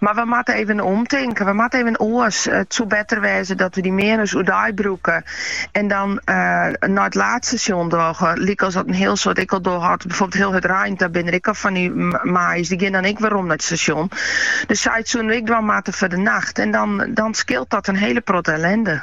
Mar we moatte even omtinken, we moatte even oars. It soe better wêze dat we dy meaners oerdei brûke en dan eh, nei it laadstasjon dogge. Lykas dat in hiel soad ek al dogge hat, byvoorbeeld hiel it terrein, daar binne der ek al fan dy maaiers, dy gean dan ek werom nei it stasjon. Dus sa't soene we ek dwaan moatte foar de nacht en dan, dan skeelt dat in hele protte ellende.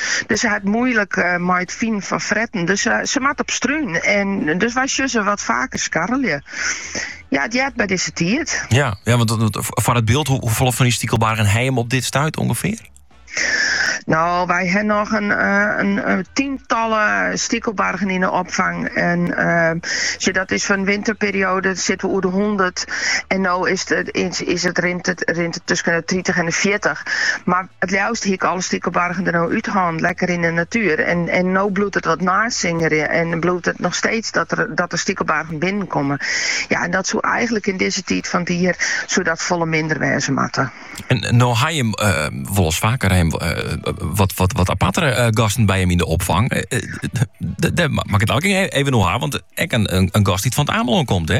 Dus sy hat it moeilik mei it finen fan fretten. Dus sy moat op strún. En dus wy sjoen se wat faker skarrelje. Ja, it heart by dizze tiid. Ja, ja want foar it byld, hoefolle fan dy stikelbargen ha jim op dit stuit ûngefear? No, wy ha noch in, eh, in, in tsientallen stikelbargen yn de opfang. En ehm, sjoch dat is fan winterperioade sitte we oer de 100. En no is it, is it, rint it, rint it tusken de 30 en de 40. Mar It leafst hie ik alle stikelbargen der no út hân, lekker yn de natuer. En no bliuwt it wat neisangerjen en bliuwt it noch steeds dat der stikelbargen binnenkomme. Ja, en dat soe eigenlik yn dizze tiid fan it jier soe dat folle minder wêze moatte. En no ha jim wolris faker wat apartere gasten by jim yn de opfang. Dêr moat ik it aanst noch even oer ha, want ek in gast dy't fan it Amelân komt, hè?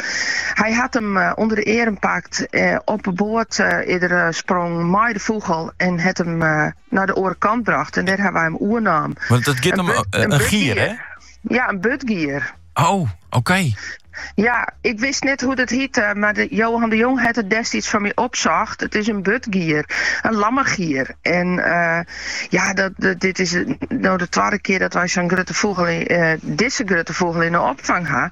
Hy hat him ûnder de earm pakt, op 'e boat er derop sprongen mei de fûgel en hat him nei de oare kant brocht en dêr ha wy him oernommen. Want dat giet om in gier, hè? Ja, in burdgier. Oh, oké. Ja, ik wist net hoe't it hiet, eh, mar de, Johan de Jong hat it destiids foar my opsocht. It is in burdgier, in lammergier. En uh, ja, dat, dit is no de twadde kear dat wy sa'n grutte fûgel, uh, eh, dizze grutte fûgel yn de opfang ha.